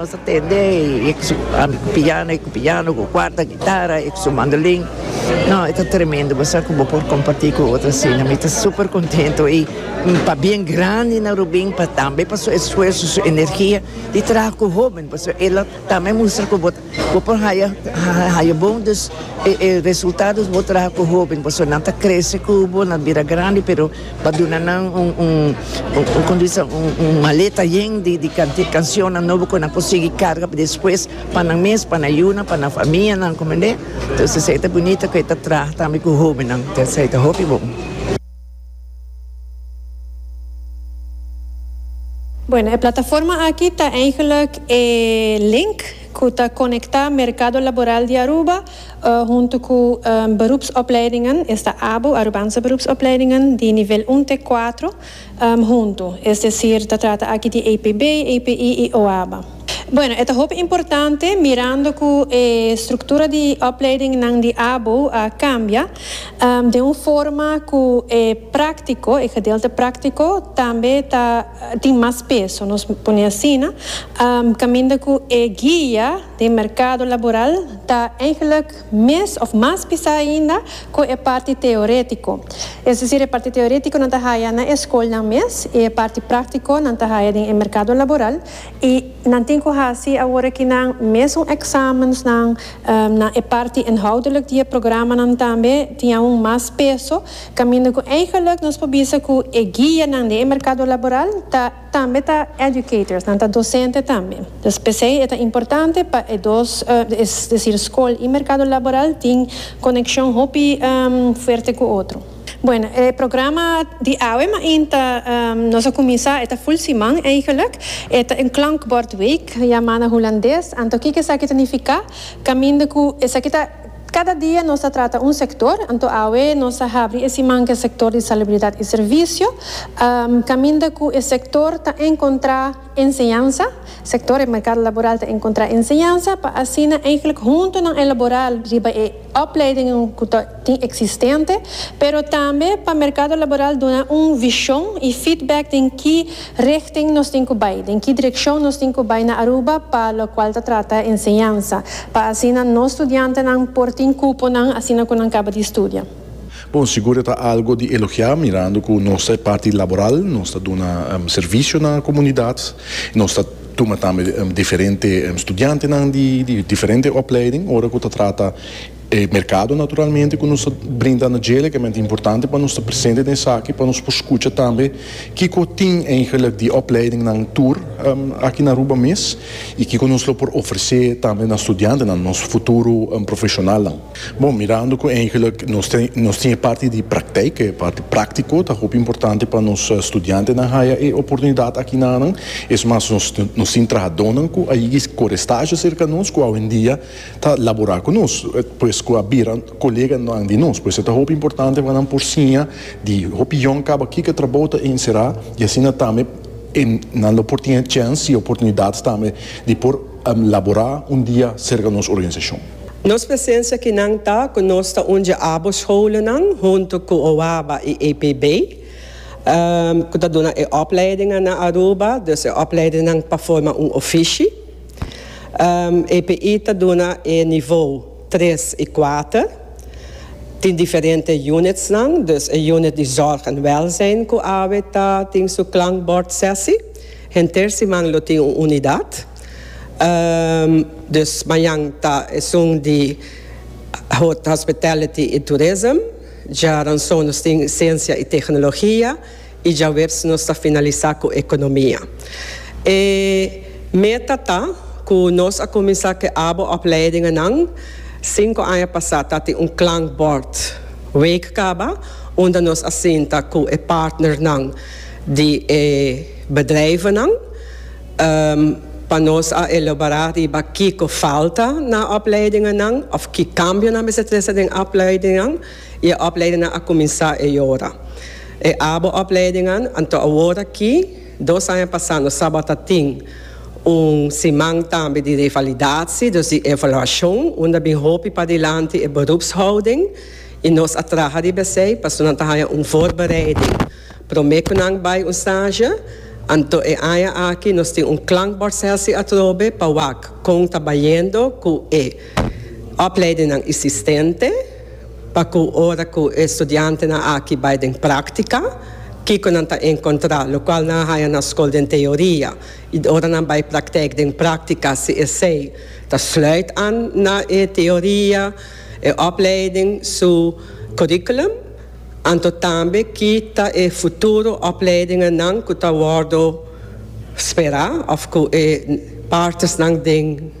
Nos ta tende e ku su piano, e ku piano, ku kuarta gitara, e ku su mandolin. No, e ta tremendo. Bo sa ku bo por kompartí ku otro asina. Mi ta super kontentu i pa bien grandi na Rubin pa tambe pa su esfuerso, su energia di traha ku hóben pasobra el a tambe mustra ku bo bo por haya haya bon e resultados bo traha ku hóben pasobra nan ta krese ku bo, nan bira grandi pero. Pa duna nan un un un como dice un un maleta yen di di canti cancionnan nobo cu nan por sigui carga pa despues pa nan mes pa nan yuna pa nan famianan comprende entonces esey ta bunito cu e ta traha tambe cu hobennan entonces esey ta hopi bon. Bueno, e plataforma aki ta eigenlijk e link cu ta conecta mercado laboral di Aruba huntu ku beroepsopleidingen, esta abo, Arubanse Beroepsopleidingen, di nivel un te kuatro huntu, es desir ta trata aki di APB, API i OABA. Bueno, e ta hopi importante mirando ku e struktura di opleidingnan di abo a kambia den un forma ku e práktiko, e gedeelte práktiko, tambe ta tin mas peso, nos pone asina, kaminda ku e guia. Den merkado laboral ta eigenlijk mes of mas pisá ainda ku e parti teoretiko. Es desir e parti teoretiko nan ta haya na e skolnan mes i e parti praktiko nan ta haya den e merkado laboral i nan tin ku hasi awor aki nan mesun eksamensnan na e parti inhoudelijk di e programanan tambe tin aun mas peso kaminda ku eigenlijk nos por bisa ku e guianan den e merkado laboral ta Tambe ta educators, nan ta docente tambe. Pues p'esei e ta importante pa e dos, es decir scol y mercado laboral tin conexion hopi fuerte cu otro. Bueno, e programa di awe main ta nos a cuminsa, e ta full siman eigenlijk. E ta een klankbordweek, yama na Hulandes. Anto kiko esaki ta nifica? Caminda cu esaki ta. Kada dia nos ta trata un sektor, anto awe nos ta habri e siman ku e sektor di salubridat i servisio, kaminda ku e sektor ta enkontrá enseñansa, sektor e merkado laboral ta enkontrá enseñansa pa asina eihglik huntu nan elaborá riba e opleidingen ku ta tin eksistente, pero tambe pa merkado laboral duna un vishon i feedback den ki Richting nos tin cu bay? Den ki direccion nos tin cu bay na Aruba pa locual ta trata enseñansa, pa asina nos studiantenan por tin cuponan asina cu nan caba di studia? Bon, sigur e ta algo di elogia mirando cu nos ta e parti laboral, nos ta duna servicio na comunidad, nos ta tuma tambe diferente studiantenan di diferente opleiding ora cu ta trata. E merkado naturalmente ku nos ta brinda na dje lekemente importante pa nos ta presente den esaki pa nos por skucha tambe kiko tin eigenlik di opleidingnan tur aki na Aruba mes i kiko nos lo por ofresé tambe na studiantenan, nos futuro profeshonalnan. Bon, mirando ku eigenlik nos tin e parti di prakteik, e parti práktiko ta hopi importante pa nos studiantenan haya e oportunidat aki nanan, es mas nos tin trahadónan ku a yega kore stazio serka nos ku awendia ta labora ku nos, pues ku a bira koleganan di nos. Pues e ta hopi importante pa nan por siña di hopi yòn kaba kiko trabou ta enserá i asina tambe e nan lo por tene chèns i oportunidat tambe di por laborá un dia serka nos organisashon. Nos presensia kinan ta ku nos ta undja abo scholennan huntu ku OABA i APB ku ta duna e opleidingan na Aruba, dus e opleidinnan pa forma un ofishi. EPI ta duna e nivou tres i kuater. Tin diferente unitsnan, dus e unit di zòrg en wèlzijn ku awe ta tin su klankbòrd sèsi. Henter siman lo tin un unidat. Dus mañan ta esun di Hospitality i Tourism. Djaranson nos tin Siensia i Teknologia. y djawersi nos ta finalisa cu economia. E meta ta cu nos a cuminsa cu e abo opleidingennan cinco aña pasa ta tin un klankbord week caba unda nos a sinta cu e partnernan di e bedrijvennan pa nos a elobora riba kico falta na opleidingennan of ki cambionan mester trece den opleidingennan. y e opleidingnan a cuminsa e yora. E abo opleidingnan anto awor aki, dos aña pasa nos tabata tin un siman tambe di revalidatie, dus di evaluacion, unda bin hopi padilanti e beroepshouding y nos a traha riba esey pasobra nan ta haya un voorbereiding prome cu nan bay un stage. Anto e aña aki nos tin un klankbordsessie atrobe pa wak con ta bayendo cu e opleidingnan isistente. Pa cu ora cu e studiantenan aki bay den practica, kico nan ta encontra? Locual nan a haya na school den teoria y ora nan bay praktijk den practica, si esey ta sluit aan na e teoria, e opleiding su curriculum, anto tambe ki ta e futuro opleidingennan cu ta wordo spera of cu e partes nan den.